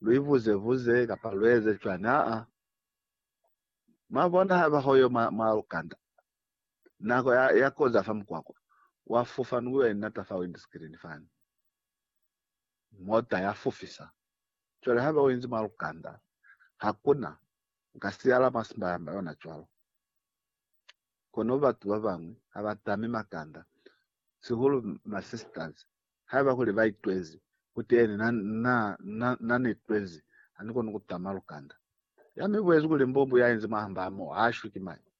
luivuze-vuze kapa lueze cwañi? Aa. Mwabona haiba hoyo mwa, mwa lukanda, nako ya, ya koza fa mukwakwa, wa fufa ni kuyo inata fa windscreen fani. Mota ya fufisa. Cwale haiba uinzi mwa lukanda, hakuna, uka siyala mwa simbayamba yona cwalo. Kono batu babañwi habatami makanda, sihulu ma sisters, Haiba kuli ba itwezi kuteñi, na, na, na, na ni itwezi, ha ni koni ku tama lukanda. Ya mi buezi kuli mbubu ya inzi mwahamba mo, ha shwi ki mañi.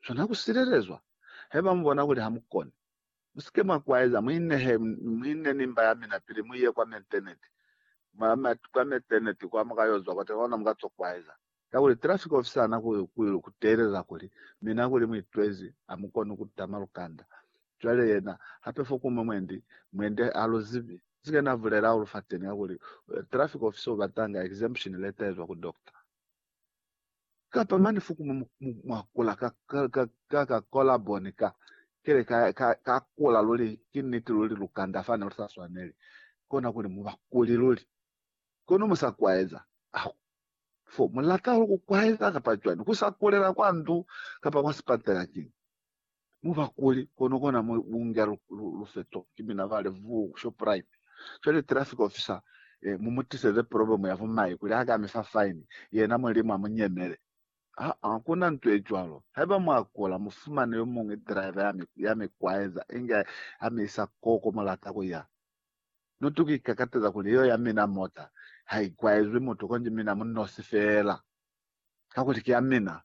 Swana ku silelezwa. Haiba mu bona kuli ha mu koni, mu si ke mwa kwaeza, mu inehe, mu ine ni mba ya mina pili mu ye kwa Meteneti, mwa, mwa, kwa Meteneti kwa, mu ka yo zwa kwateni, ona mu ka to kwaeza. Kakuli traffic officer ana ku ku teelela kuli mina kuli mu itwezi a mu koni ku tama lukanda. Cwale yena hape fo kuñwi mwendi, mwendi ha lu zibi. Nsi ke na bulela hahulu fateni kakuli traffic officer u batanga exemption letter ezwa ku doctor. Kapa mane fo kuñwi mu mu mwa kula ka ka ka ka collar bone ka kile ka ka ka kula luli. Ki niti luli lukanda fane lu sa swaneli kona kuli mu ba kuli luli. Kono mu sa kwaeza aho fo mu lata hahulu ku kwaeza kapa cwani, ku sa kulela kwa ndu kapa kwa sipatela kiñi. Mu ba kuli, kono kona mu bunge lufeto ki mina ba Levoo ku Shoprite. Cwale traffic officer e, mu mu tiseze problem ya bumai kuli ha ka mi fa fine, yena Mulimu a mu nyemele. Aa, ku na nto ye cwalo. Haiba mwa kula, mu fumane yo muñwi driver ya mi, ya mi kwaeza inge ha mi isa koko mu lata ku ya. Nutu ki ikakateza kuli iyo ya mina mota ha i kwaezwi mutu konji mina mu nosi feela, kakuli ki ya mina.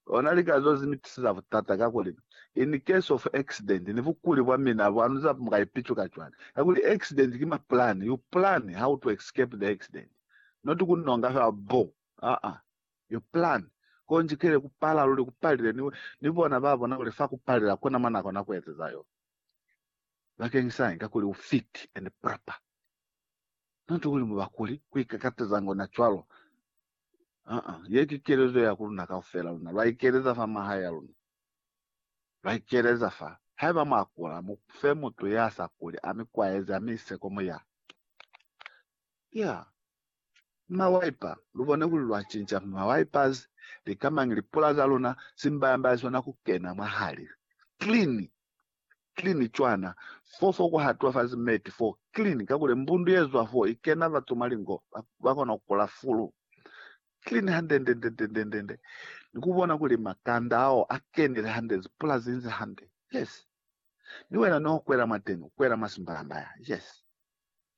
Ona lika zo zi ni tiseza butata, kakuli, in case of accident, ni bukuli bwa mina bwa nu za muka ipicuka cwani? Kakuli accident ki mapulani, you plan how to escape the accident, not ku nonga feela bbo, aa, you plan. Konji kile ku pala luli, ku palile, ni, ni bona ba bona kuli fa ku palela, kuna mwa na kona ku ezeza yo. bakeng sa inga kuli u fit and proper. Not kuli mu bakuli ku ikakatezanga ona cwalo. Aa, ye ki kelezo ya ku luna kaufela. Luna lwa ikeleza fa mahae ya luna. Lwa ikeleza fa. Haiba mwa kula, mu fe mutu ya sa kuli a mi kwaeze, a mi ise kwa muya. Yeah. Ni mawaipa. Lu bone kuli lwa cinca mawipers, lika mañi lipula za luna, simbaya-mbaya sona ku kena mwahali. Clean! clean cwana fo fo ku hatuwa fazi meti fo clean kakuli mbundu ye zwa fo i kena batu mwa lingo ba, ba kona ku kula fulu clean hande nde nde nde nde nde ni ku bona kuli makanda ao a kenile hande zi pula zi nzi hande yes ni wena ni o kwela mwateni u kwela mwa simbalambaya yes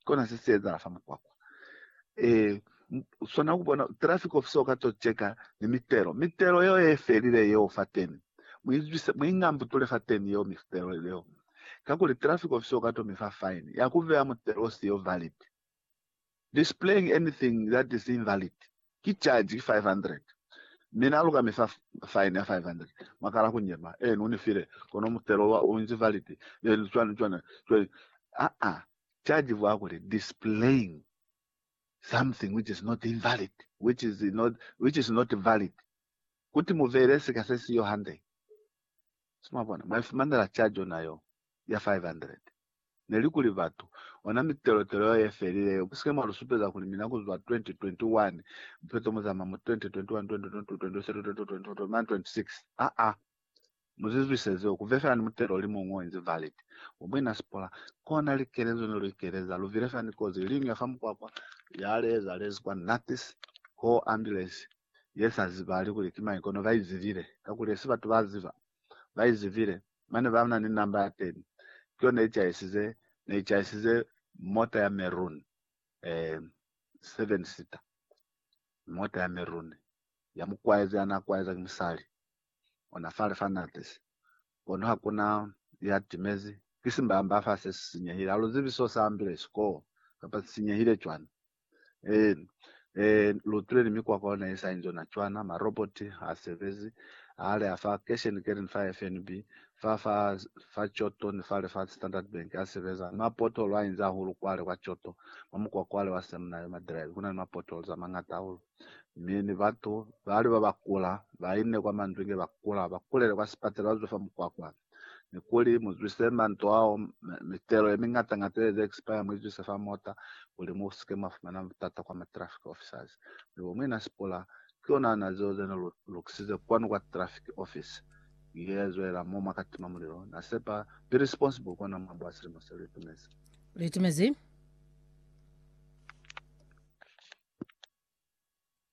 kona se si ezahala fa mukwakwa e swana ku bona traffic officer o ka to cheka ni mitelo mitelo yeo e felile yeo fateni muizwise muingambutule fateni yeo mitelo leo kakuli traffic officer o ka to mi fa fine ya ku vea mutelo o siyo valid displaying anything that is invalid Ki caji ki 500. Mi Na luka mi fa faini ya 500. Mwa kala ku nyema. Ee, Nu ni file, kono mutelo wa u inzi validi. Ee, ni cwani, cwani, cwani. Aa, caji vwa kuli, displaying something which is not invalid, which is not, which is not valid. Kuti mu vele sika se siyo hande. Si mwa bona? Mwa ifumanela caji ona yo. ya 500. Neli kuli batu, ona mitelotelo yeo yefelile yeo, musike mwa lusupeza kuli mina kuzwa 2021, mupeto muzama mu 2021, 2022, 2023, 2024, 2024, mane 26. Aa! Muzizwise zeo, kuve fela ni mutelo olimuñwi oinzi valid, wa muina Spola, kona likelezo ne luikeleza. Luvile fela ni kozi yeliñwi ya fa mukwakwa, yale yezalezi kwa Natas, koo ambulance, ye sa zibali kuli ki mañi kono ba i zibile, kakuli hesi batu ba ziba, ba i zibile, mane ba na ni namba ya teni, ki yona ye caisize, ne i caisize mota ya maroon, eh, seven seater, mota ya maroon, ya mu kwaeza, ya na kwaeza ki musali, ona fale fa na tisi, kono ha ku na ya timezi, ki simbamba fa se si sinyehile, ha lu zibi so sa ambile, sikoo, kapa si sinyehile cwani. Lutuleli mikwakwa yona ye sa inzi yona cwana, ma robot ha sebezi, ha leha fa kesheni kelini fa FNB, fa fa fa Choto ni fale fa Standard Bank ha sebeza. Ma pothole a inzi ahulu kwale kwa Choto, mwa mukwa kwale wa Seminary, ma drive kuna ni ma potholes a mangata ahulu. Mi ni batu bali ba ba kula, ba inne kwa mandwinge ba kula, ba kulele kwa sipatela ba zwe fa mukwakwa. ni kuli mu zwise manto ao mitelo ye mingata ngata ye ze expire mu izwise fa mota kuli mu sike mwa fumana butata kwa ma traffic officers mi bo muina Sipula ki yona ana zeo ze ni lukisize kwanu kwa traffic office ye zwela mo mwa ka tima mulilo na sepa be responsible kona mwa bwa silimo se lu itumezi lu itumezi